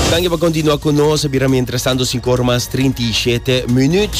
Danki pa kontinua ku nos. E bira mientras tanto sinku ora mas trinta i shete minut.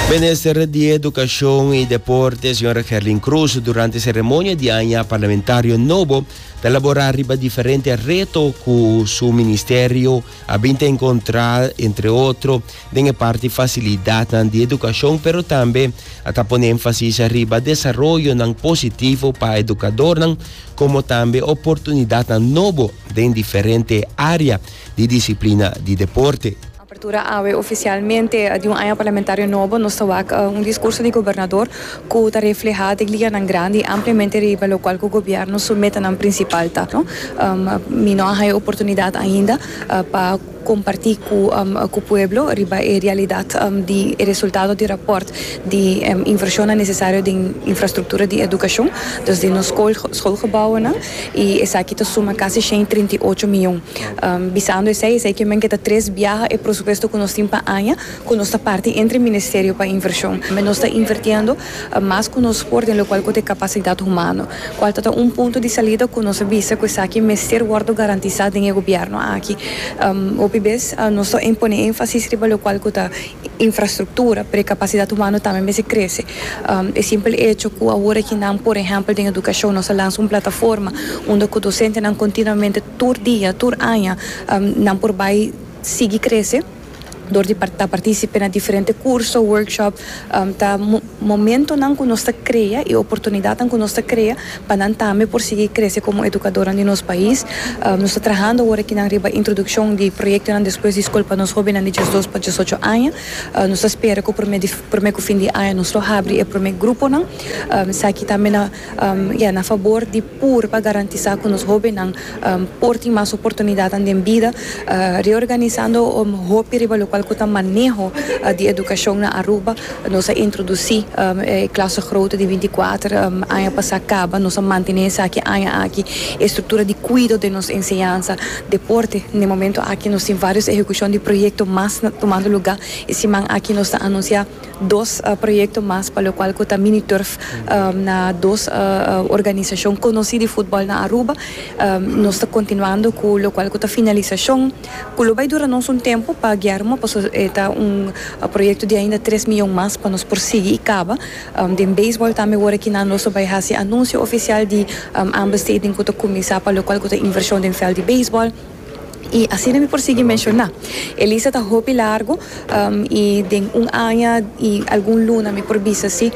Minister di Edukashon i Deporte, señora Gerlin Cruz, durante seremonia di aña parlamentario nobo, ta elabora riba diferente reto ku su ministerio a bin ta enkontrá, entre otro, den e parti fasilidatnan di edukashon, pero tambe a ta pone énfasis riba desaroyonan positivo pa edukadornan, komo tambe oportunidatnan nobo den diferente área di disiplina di deporte. Apertura Awe ofisialmente di un aña parlamentario nobo, nos ta wak un diskurso di gobernador ku ta reflehá dje lianan grandi ampliamente riba lokual ku gobièrnu su metanan prinsipal ta. Mi no a haña oportunidat ainda pa. comparti cu pueblo riba e realidad di e resultado di rapport di inversionnan necesario den infrastructura di educacion, dus den nos schoolgebouwennan, y esaki ta suma casi shei trinta i ocho miyon. Bisando esey, esey kimen ke ta tres biaha e prosupuesto cu nos tin pa aña cu nos ta parti entre Ministerio pa inversion. Nos ta invertiendo. mas ku nos por den lokual ku ta e kapasidat humano, kual ta ta un punto di salida ku nos a bisa ku esaki mester wòrdu garantisá den e gobièrnu aki. Hopi bes nos ta pone énfasis riba lokual ku ta infrastruktura, pero e kapasidat humano tambe mester krese. E simpel echo ku awor aki nan, por ehèmpel den edukashon, nos a lansa un plataforma unda ku dosentenan kontinuamente tur dia, tur aña, nan por bai sigui krese, dor di ta partísipe na diferente kurso, workshop, ta momentonan ku nos ta krea i oportunidatnan ku nos ta krea pa nan tambe por sigui krese komo edukadornan di nos pais. Nos ta trahando awor akinan riba introdukshon di proyektonan despues di skol pa nos hóbennan di diesdos pa diesocho aña. Nos ta spera ku promé di promé ku fin di aña nos lo habri e promé gruponan. Esaki tambe na, ya, na fabor di. Pur pa garantisá ku nos hóbennan por tin mas oportunidatnan den bida, reorganisando hopi riba lokual ku ta maneho di edukashon na Aruba, nos a introdusí e klase grote di binti kuater aña pasá kaba. Nos a mantené esaki aña aki. E struktura di kuido den nos enseñansa, deporte, den momentu aki nos tin vários ehekushon di proyekto mas tumando lugá. E siman aki nos ta anunsiá. Dos proyekto mas pa lokual ku ta mini turf na dos organisashon konosí di futbòl na Aruba. Nos ta kontinuando ku lokual ku ta finalisashon ku lo bai dura nos un tempu pa guiá ruma pasobra e ta un proyekto di ainda tres mion mas pa nos por sigui i kaba. Den beisbòl tambe wor aki nan nos lo bai hasi anunsio ofisial di ambesteding ku ta kuminsá pa lokual ku ta invershon den vèlt di beisbòl. I asina mi por sigui menshoná. E lista ta hopi largu, i den un aña i algun luna mi por bisa si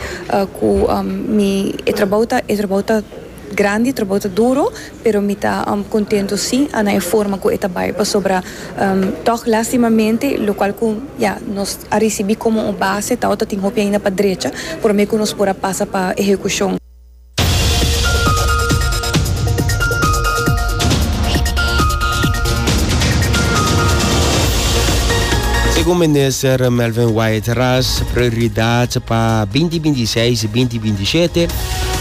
ku mi e trabou ta e trabou ta grandi, e trabou ta duru, pero mi ta kontentu si na e forma ku e ta bai pasobra tòg lastimamente lo kual ku ya nos a risibí komo un base ta otatin hopi ainda pa drecha promé ku nos por a pasa pa ehekushon. Segun minister Melvin White Ras, prioridad pa binti binti seis, binti binti shete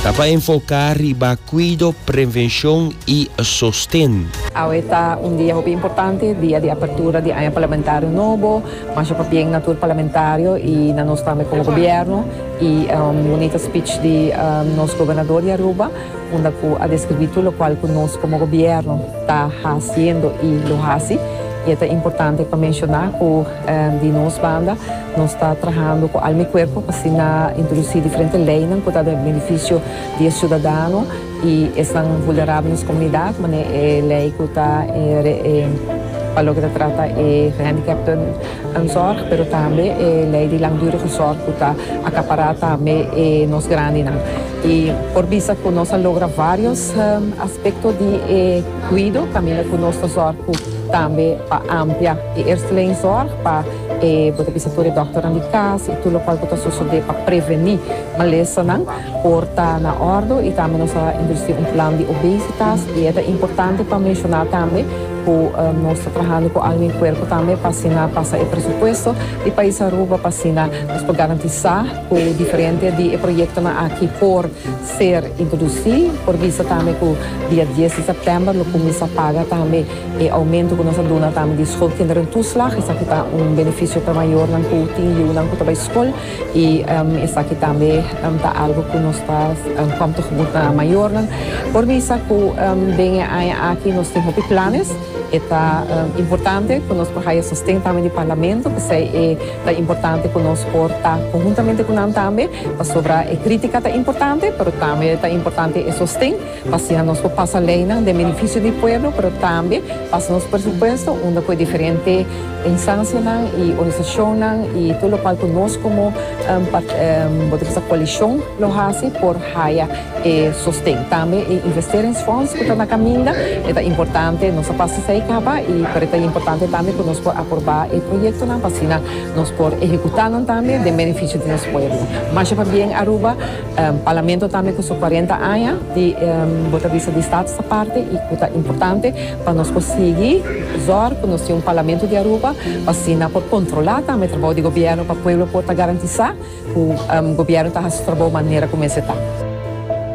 ta pa enfoca riba cuido, prevencion y sosten. Awe ta un dia hopi importante, dia di apertura di aña parlamentario nobo, masha pa bien na tur parlamentario y na nos tambe como gobierno. E un bunita speech di nos gobernador di Aruba unda cu a describi tur locual cu nos como gobierno ta haciendo y lo haci. Y e ta importante pa menciona cu di nos banda nos ta trahando cu alma y cuerpo pa asina introduci diferente leynan cu ta den beneficio di e ciudadano y esnan vulnerable di nos comunidad, manera e ley cu ta pa loke ta trata e gehandicapten. Nan zorg, pero tambe e lei di langdurige zorg cu ta acapará tambe e nos grandinan. Y por bisa cu nos a logra varios aspecto di e cuido caminda cu nos ta zorg cu tambe pa amplia e eersteling zorg pa e, bo ta bisa tur e dokternan di cas y tur locual cu ta sosode pa preveni malesanan. Por ta na ordo y tambe nos a introduci un plan di obesitas y e ta importante pa menciona tambe cu nos ta trahando cu Almi Puerco tambe pa asina pasa e presupuesto di pais Aruba pa asina nos por garantisa cu diferente di e proyectonan aki por ser introduci. Por bisa tambe cu dia dies di september lo cuminsa paga tambe e aumento cu nos a duna tambe di schoolkinderentoeslag esaki ta un beneficio pa mayornan cu tin yunan cu ta bay school. I esaki tambe ta algu ku nos ta kom ta hugur na mayornan. Por bisa ku den e aña aki nos tin hopi planes. E ta importante ku nos por haya sosten tambe di Parlamento, p'esei e ta importante ku nos por ta konhuntamente ku nan tambe. Pasobra e kritika ta importante, pero tambe ta importante e sosten. pa asina nos por pasa leynan den benefisio di pueblo, pero tambe pasa nos presupuesto unda ku e diferente instancianan y organisacionnan y tur lokual ku nos komo bo ta bisa koalishon lo hasi por haya e sosten. Tambe e investeringsfonds ku ta na kaminda e ta importante, nos a pasa esei kaba y por e ta importante tambe ku nos por aproba e proyektonan pa asina nos por ehekutanan tambe den benefisio di nos pueblo. Masha pabien Aruba Parlamento tambe cu su cuarenta aña di bo ta bisa di Staat sta parti y cu ta importante pa nos por sigui zorg cu nos tin un Parlamento di Aruba pa asina por controla tambe trabou di Gobierno pa pueblo por ta garantisa cu Gobierno ta haci su trabou manera cu mester ta.